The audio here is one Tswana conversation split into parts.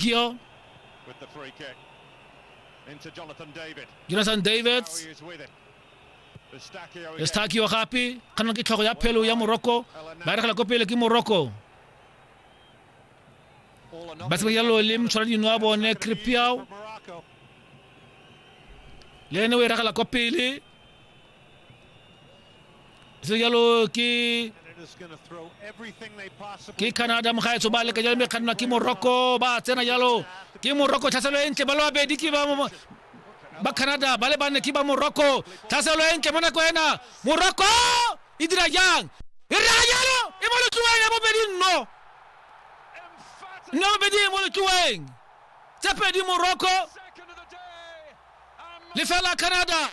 Gio. Jonathan Davids. Estakio gape kana ke tlhogo ya phelo ya Morocco ba regela ko pele ke Morocco ba se ya lo le mtshwara dino a bone Kripiao le ene o e regela ko pele se jalo ke ke canada mogaetso ba leka jalo mme kgannwa ke morocco ba tsena jalo ke morocco tlhaselo e ntle ba le babedi ke ba ba canada ba le banne ke ba morocco tlhaselo e ntle mo nako ena morocco e dira jang e raya jalo e mo letloeng ya bobedi nno nno bobedi e mo letloeng tse pedi morocco lefela canada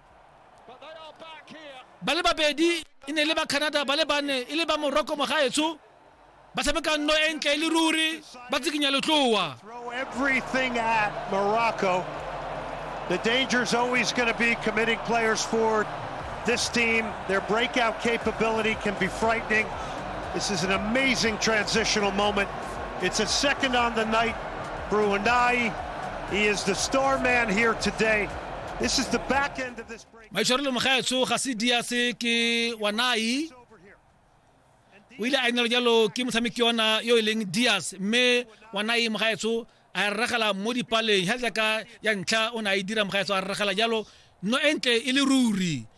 ba le babedi e ne le ba canada ba le bane e le ba moroko mogaetsho ba tshameka nno e ntle e le ruri ba tsikinya letloa The danger is always going to be committing players forward. This team, their breakout capability can be frightening. This is an amazing transitional moment. It's a second on the night. Brunei, he is the star man here today. This is the back end of this break. maitshwarelo mogaetsho ga se dia se ke wanai o ile a inelo jalo ke motshameki yona yo e leng dias mme wanai mogaetsho a e rregela mo dipaleng ga jaaka ya ntlha o ne a e dira mogaetsho a rregela jalo no e ntle e le ruri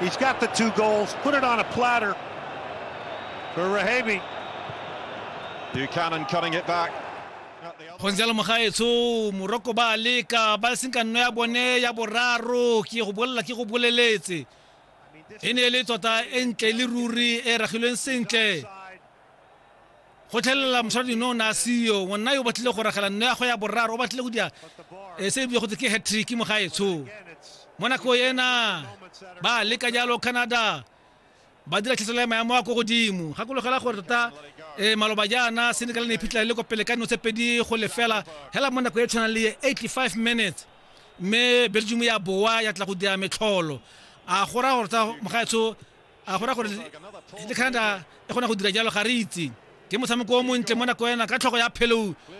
He's got the two goals, put it on a platter for Rahebi. Buchanan cutting it back. go ntse le mogaetsho moroko ba leka ba seng ka nno ya bone ya boraro ke go bolela ke go boleletse e ne e le tota e ntle le ruri e ragilweng sentle go tlhelela mosadi no o ne a seyo ngwanna yo o batlile go ragela nno ya go ya boraro o batlile go dira e se ebile go tse ke hatrick mo gaetsho mo nako ena ba leka jalo canada ba dira tlhaselo ya maemo a ko godimo gakologela gore tota um maloba jaana senegal ne iphitlhela le ko pele ka dino tse pedi go lefela hela mo nako e tshwanang le 85 minutes mme belgium ya boa ya tla go dira metlholo a go raya gore tsa mogaetsho a go ra gore le canada e kgona go dira jalo ga re itse ke motshameko o montle mo nako ena ka tlhogo ya phelou